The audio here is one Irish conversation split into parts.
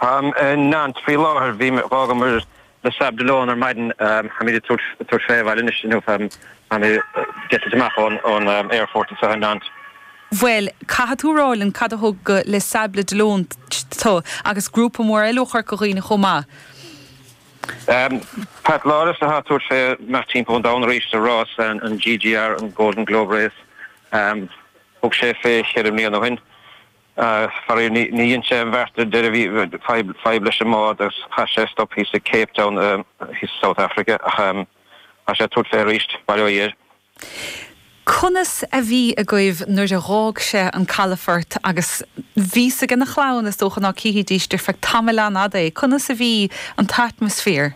Táim i Nantes faoi láthair. Bhí mé, dh'fhágamar Les Sables d'Olonne ar maidin, táimid ag tabhairt, tabhairt fé abhaile anois, inniu, táim, táim ag eitilt amach ón, ón aerfort anseo i Nantes. Bhuel, caithfidh tú a rá linn cad a thug go Les Sables d'Olonne tú, agus grúpa mór eile ó Chorca Dhuibhne chomh maith. Pat Lawless atá ag tabhairt fé imeacht timpeall an domhain arís sa rás, an GGR, an Golden Globe Race. Thug sé fé cheithre mbliana ó shin. Faraoir, níor dhein sé an bheart ar deireadh. Bhí fadhb leis an mbád agus chaith sé stop thíos i gCape Town, thíos i South Africa, ach tá sé ag tabhairt fé arís, bail ó Dhia air. Conas a bhí agaibh nuair a dh'fhág sé an calafort agus bhí's aigena chlann, is dócha ná chífidís ar feadh tamaill an-fhada é, conas a bhí an t-atmaisféar?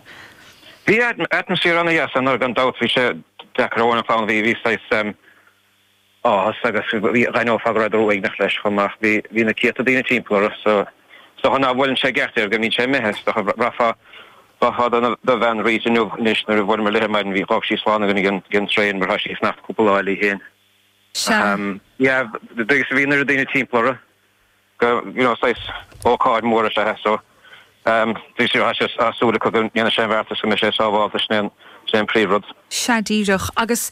Bhí atmaisféar an-dheas ann, ar ndóigh, gan dabht, bhí sé deacair ar an chlann, bhí saghas, áthas agus dh'aithneofá go rabhadar uaigneach leis chomh maith. Bhí bhí na céadta daoine timpeall orthu so is dócha ná bhuaileann sé i gceart air go mbíonn sé imithe is dócha bhraithfeá do do bhean Rita inniu anois nuair a bhuail mé léithe ar maidin bhí dh'fhág sí slán againn ag an traein mar tá sí ag fanacht cúpla lá eile í féin. Sea. Sea, bhí agus bhí an oiread daoine timpeall orthu. go, you know, saghas ócáid mhór is ea so ehm tá súil acu go ndéanfadh sé an bheart is go mbeidh sé sábháilte sin é an, sin é an príomhrud. Sea díreach agus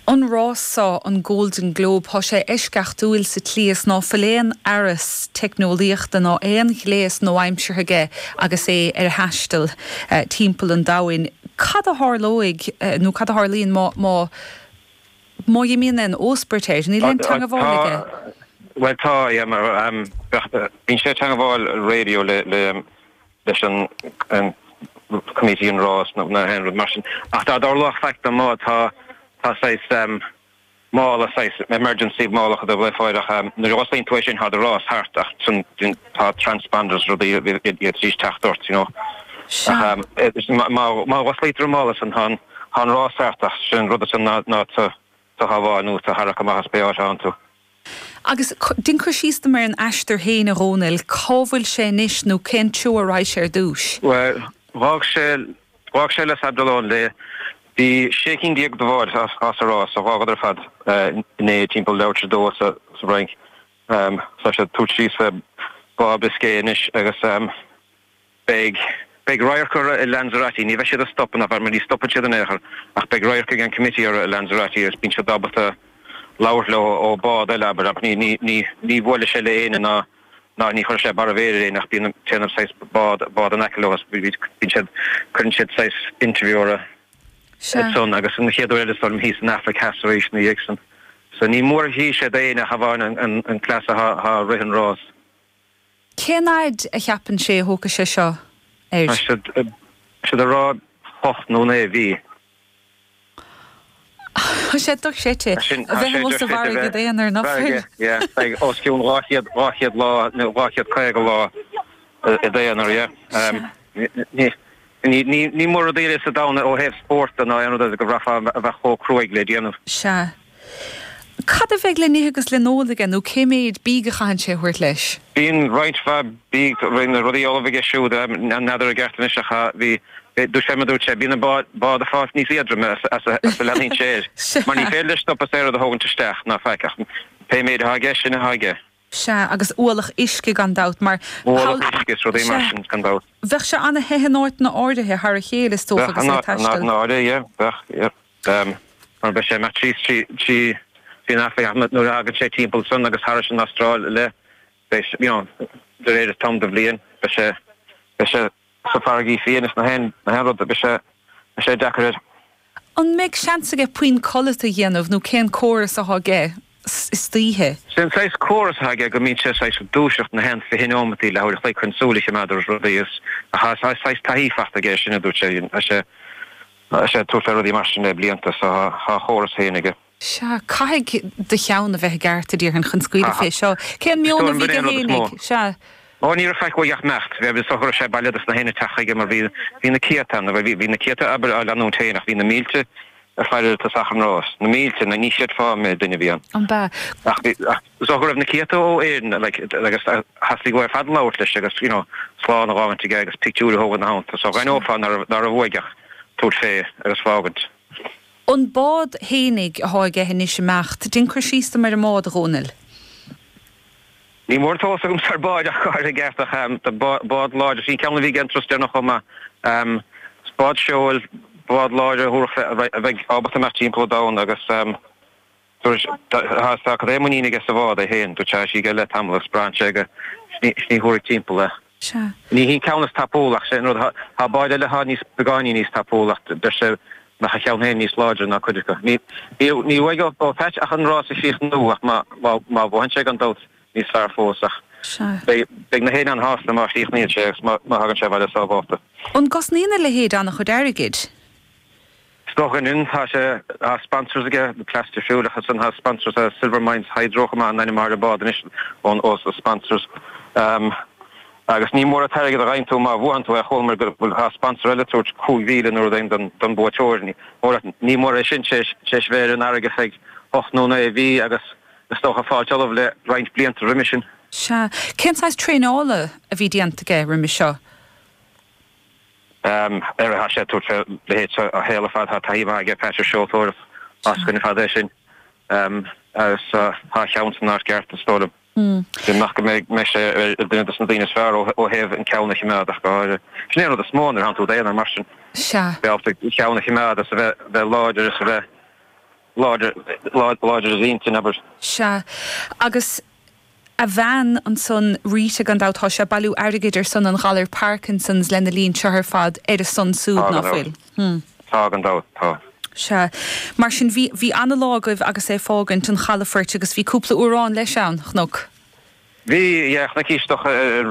an rás so, an Golden Globe, thá sé eisceachtúil sa tslí is ná fuil aon fhearas teicneolaíochta ná aon ghléas nua-aimseartha aige agus é ar a thaisteal timpeall an domhain. Cad a tharlóidh nó cad a tharlaíonn má, má, Má imíonn aon óspairt air, níl aon teangabháil aige. Bhuel tá, bíonn sé ag teangabháil radio leis an Committee an rás nó aon rud mar sin. Ach dá dtarlódh faic dó, tá saghas mála, saghas emergency mála acu dó le fáil ach nuair a osclaíonn tú é sin tá do rás thart ach sin. tá transponders rudaí ann chun teacht ort you know Sea. ach eh má má osclaítear an mála sin tá an tá an rás thart ach sin an rud is ea ná tú a shábháil nó tú a tharrac amach as pé áit a thánn tú. Agus dein cur síos dom ar an aistear féin a Dhomhnaill, cá bhfuil sé anois nó cén treo a raghadh sé ar dtúis? Bhuel dh'fhág sé dh'fhág sé Les Sables d'Olonne le bhí sé cinn déag de bháid sa sa rás dh'fhágadar ar fad eh inné timpeall leathuair tar éis a dó sa sa bhFrainc. Tá sé ag tabhairt síos le Bá Biscay anois agus beidh radharc orthu i Lanzarote. Ní bheidh siad ag stopadh, ná mar ní stopann siad in aon chor, ach beidh radharc ag an Committee orthu i Lanzarote agus bíonn siad ábalta labhairt leo ó bhád eile, abair, ach ní bhuailfidh sé le éinne ná ní chuirfidh sé barr a mhéire ar éinne ach bíonn téann saghas bád in aice leo agus bíonn siad, cuireann siad saghas interview orthu. san agus an chéad uair eile stoirm thíos san Afraic Theas arís ina dhiaidh san. So ní mór dhíth sé d'éinne ach amháin an cleas athá rith an rás. Cén fhaid a cheapann sé a thógfaidh sé seo air? Tá siad ag rá ocht nó naoi mhí. Tá sé dochreidte. A bheith amuigh sa bhfarraige i d'aonar nach bhfuil? Yeah, yeah. Os cionn dhá chéad dhá chéad lá nó dhá chéad caoga lá i d'aonar, yeah. Ní Ní mór rudaí eile sa domhan ó thaobh spóirt de ná aon rud eile go bhféadfadh a bheith chomh cruaidh le déanamh. Sea. Cad a bheidh le n-ithe agus le n-ól aige nó cé méid bídh a chaitheann sé a thabhairt leis? Bíonn roinnt mhaith bídh, na rudaí ullamh aige siúd, n'fheadar i gceart anois ach bhí, dúirt sé mar dúirt sé, bíonn an bád ag fáilt níos éadroime is a leanaíonn sé air mar ní féidir leis stopadh is aon rud a thógaint isteach ná faic ach pé méid atá aige, sin atá aige. Sea, agus ualach uisce gan dabht, mar. Ualach uisce is rudaí mar sin, gan dabht. Bheadh sé ana the in áiteanna áirithe thar a chéile is dócha agus é ag taisteal. Bheadh, náire, yeah, bheadh, yeah. Mar beidh sé mar trí is trí, trí, trí na Afraic Theas nuair a thagann sé timpeall san agus thairis an Astráil i leith beidh, you know, de réir an t-am de bhliain beidh sé, beidh sé. sa bhfarraige féin is na haon rud beidh sé deacair air. An mbeidh seans aige puinn codlata a dhéanamh nó cén córas athá aige istoíche? Sé an saghas córas athá aige go mbíonn sé saghas ag dúiseacht na haon fiche neomataí leathuair a chloig chun súil a chimeád ar rudaí is athá saghas taithí fachta aige air sin a dúirt sé. Tá sé ag tabhairt fé rudaí mar sin le blianta so thá a chóras féin aige. Sea, caithfidh do cheann a bheith i gceart, a déarfainn, chun scaoileadh fé seo. Cén meon a bhí aige fhéin ag. Sea. Ó, ní raibh faic uaidh ach imeacht. Bhí, bhí, so go raibh sé bailithe dos na héinne ag teacht chuige mar bhí, bhí na céadta ann, bhí, bhí na céadta abair á leanúint féin ach bhí na mílte ar fáil ar tosach an rás. Na mílte, na, ní chreidfeá an méid duine a bhí ann. Ab ea? Ach bhí, ach so go raibh na céadta ó Éirinn like agus theastaigh uathu ar fad labhairt leis agus you know slán a fhágaint aige agus pictiúir a thógaint na theannta so dh'aithneofá ná raibh, ná raibh uaidh ach tabhairt fé agus fágaint. An bád fhéinig athá aige anois ag imeacht, dein cur síos dom ar an mbád, a Dhomhnaill. Ní mór an t-eolas agamsa ar báid ach táid i gceart ach bád láidir. Sin ceann a bhí aige an turas deireanach chomh maith. Is bád seoil, bád láidir a thabharfadh a bheidh ábalta imeacht timpeall an domhain agus. Saoirse, Tá, tá, tá cad é muinín aige sa bhád é féin, tá sí aige le tamall agus braitheann sé gur sin í, sin í a thabharfaidh timpeall é. Sea. Ní hí an ceann is tapúla ach sé'n rud, thá báid eile thá níos, beagáinín níos tapúla ach deir sé nach a cheann féin níos láidre ná cuid acu. Ní, ní, ní bheidh ó, ó Pheait ach an rás a chríochnú ach má, má, má bhuann sé gan dabht níos fearr fós ach Sea. beidh, beidh na héinne an-shásta má chríochnaíonn sé agus má, má thagann sé abhaile sábhálta. An gcosnaíonn a leithéid an-chuid airgid? Is dóigh liom, tá sé tá sponsors aige, The Plaster Fuel, ach ansan tá sponsors ó Silver Mines Hydro chomh maith tá ainm ar an mbád anois ós na sponsors. Agus ní mór an t-airgead a dheineann tú má bhuann tú é, chualamar go bhfuil tá sponsor eile tabhairt 5,000 nó rud éigin don don buaiteoir, ní mór ní mór é sin, sé sé sé bheith ar an bhfarraige faid ocht nó naoi mhí agus is dócha fáilt ullamh le roinnt blianta roimis sin. Sea. Cén saghas traenála a bhí déanta aige roimis seo? á thá sé ag tabhairt fé leithéid a shaol ar fad. Thá taithí mhaith aige Pat ar seoltóireacht as sin, fada é sin, agus thá a cheann san áit gceart, is dóigh liom. Sin go mbeadh sé ar duine dos na daoine is fearr ó thaobh an ceann a chimeád. Sin é an rud is mó nuair a thánn tú i d'aonar mar sin. Sea. Bheith ábalta an ceann a chimeád is a bheith bheith láidir is a bheith láidir láidir láidir i d'intinn, abair. Sea. Agus a bhean ansan, Rita, gan dabht, tá sé ag bailiú airgid ar son an ghalair Parkinsons lena linn seo ar fad, ar a son súd, ná fuil? Tá gan dabht, tá. Sea. Mar sin, bhí, bhí ana-lá agaibh agus é ag fágaint an chalafoirt agus bhí cúpla amhrán leis ann, a chloisim. Bhí, yeah, chnoic ísleacha ar.